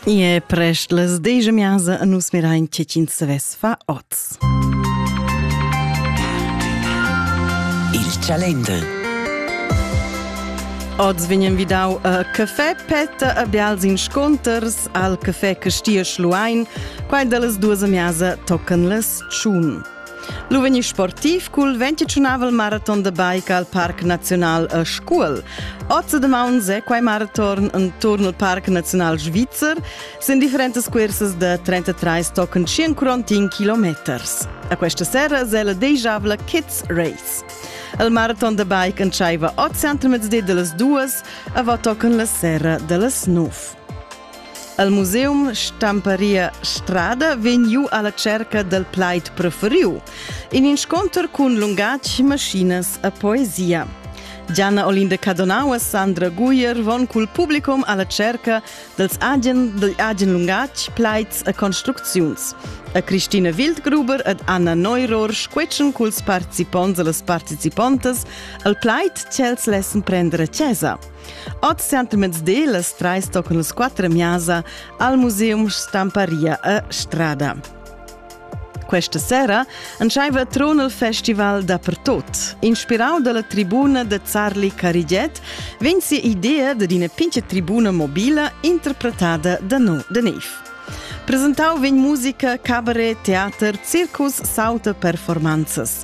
E prest las deja miasa a nus mirain tge ch'ins savess fa oz. Il Chalender Oz vegnan vidau a café petta a bials insconters al café Castia Schluein, quai da las duas a miasa tocan las tschun. L'uveni sportiv cul 25 maraton da bike al Parc Naziunal a Scuol. Oz da maun è quai maraton intorno al Parc Naziunal Svizzer sin differentas cursas da 33 tochen 141 kilometers. A questa sera è la degiavla Kids Race. Il maraton da bike entscheiva oz entramezdi de las duas, a va tochen la sera de las nov. El museum Stamparia Strada vegn giu alla cerca dal plaid preferiu, in inscunter cun lungatg, maschinas e poesia. Gianna Olinda Cadonau e Sandra Guyer von cul publicum alla cerca dels agen, del agen lungatg, plaids e construcziuns. A Christina Wildgruber ed Anna Neuror squetschen culs participonts e las participontas al plaid ch'els lessen prender a chesa. Ot centimeters las trais tocan las quattro miasa al Museum Stamparia a Strada. Questa sera entscheiva Tronel Festival dappertot. Inspirau dalla tribuna de Zarli Carigiet vegn si idea de una pinche tribuna mobile interpretada da no de Nef. Presentau vegn musica, cabaret, teater, circus, sauta performances.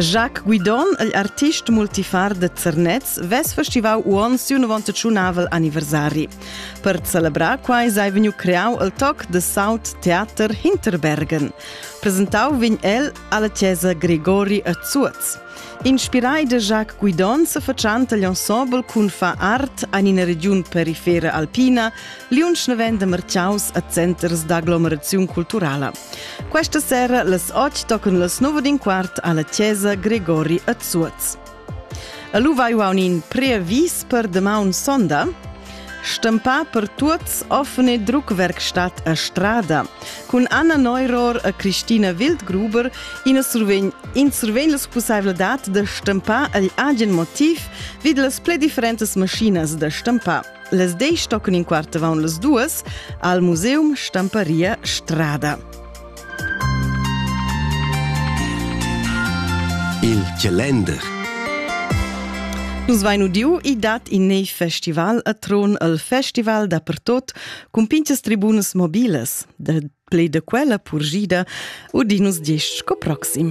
Jacques Guidon, il artist multifar de Zernez, ves festivau uon siu 91 anniversari. Per celebrar quai sei vegniu creau il toc de South Theater Hinterbergen. Presentau vegn el alla chiesa Gregori a Zuoz. Inspirai de Jacques Guidon se facciant agli ensemble cun fa art an ina region perifera alpina, liunsch ne vende merciaus a centers d'aglomeraziun culturala. Questa sera las 8 tocan las 9 din quart alla chiesa Gregori a Zuoz. A lu vai un in preavis per demaun sonda. Stampa per tuots offene Druckwerkstatt a Strada cun Anna Neuror e Christina Wildgruber in survegn in survegn la possibilità da stampar agl agen motiv vid las pli differentes maschinas da stampar. Les deis toccon in quart avon las duas al Museum Stamparia Strada. Il calender Nus vain udiu i dat in neiv festival a Tron al festival da pertot cun pinchas tribunas mobilas. Da plei da quella purgida udinus diesch sco proxim.